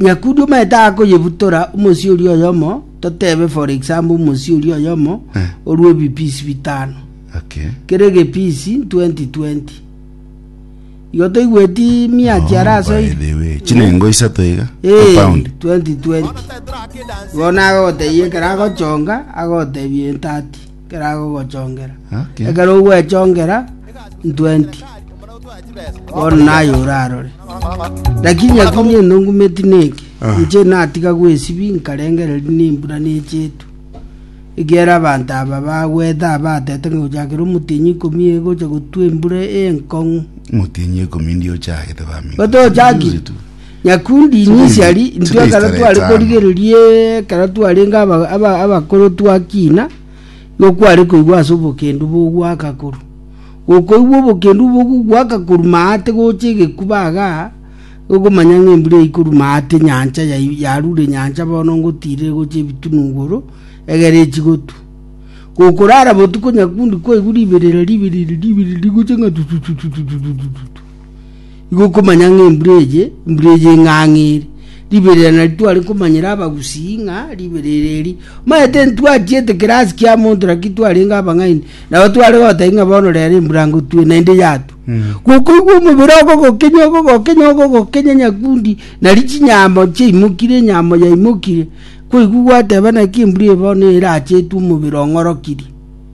Nyakudi omanyete akoyebutora omosio oria oyomo, totebe for example omosio oria oyomo Eh. orue ebipisi bitano. Okay. Kere egepisi 2020. Igo toigweti miachi ara ase Oh, by the way. Chinengo isato iga. Eh, Pound. 2020. Igo nagotebi ekero agochonga agotebia entati. Ekero agogochongera. Ekero ogwechongera ntwenti, bono naye orarore. Lakini akuni enongumeti neke, ah. inche natiga gwesibi nkarengereria nembura nechetu ekiera abanto aba bagwete abatete ng'a gochakera omotienyi ikomi egocha gotwa embura enkong'u motienyi ikomi ndio ochagete bamino gotochaki nyakundi inwe Today- isari intwe today ekero tarehe tware tano. korigereria ekero twarenge aba- aba- abakoro twakina nokware koigwa ase obokendu bogwaka koru gokoigwa obokendu bogogwaka koru maate gocha egekuba iga ogomanya ng'a embura eikoru maate nyancha yai- yarure nyancha bono ngotirire gocha ebitunu igoro egere echigotu gokorara botuko nyakundi kwaigwa riberera riberera riberera rigocha ng'a tutututututututu Igo okomanya ng'a embura eye, embura eye eng'ang'a eri. Riberera nari tware komanyera abagusii ng'a riberera eri. Omanyete ntwatiete kerasi kia monto naki twarenge abang'aini. Nabo tware gotebia ng'a bono rero embura ngotue naende yatwa. Gokoigwa omobere ogogokenya ogogokenya ogogokenya nyakundi nari chinyama chiaimokire enyama yaimokire. Kwaigwa gwateba naki embura eye bono erache etwe omobere ong'orokirie.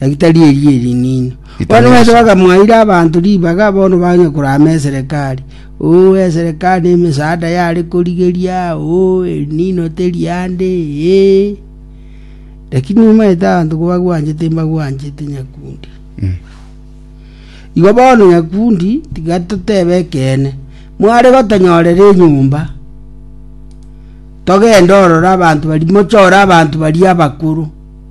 Daktari eria erinini. Bono Itanyaso. Yesu bakamwaira abanto ribaga bono banye korama eserekari. Oo eserekari na emesaada yare korigeria, oo erinino teri ande, ee. Lakini nimaete abanto kobagwanchete mbagwanchete nyakundi. Mm. Igo bono nyakundi tiga totebe ekeene. Mware gotonyorera enyomba. Togende ororo abanto bari mochore abanto bari abakoro.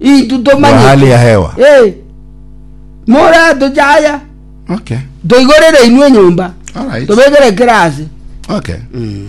Intwe tomanyeti. Wa hali ya hewa. Eh. Mora tochaya. Okay. Toigorere inwe nyumba. All right. Tobegere kirasi. Okay. Mm.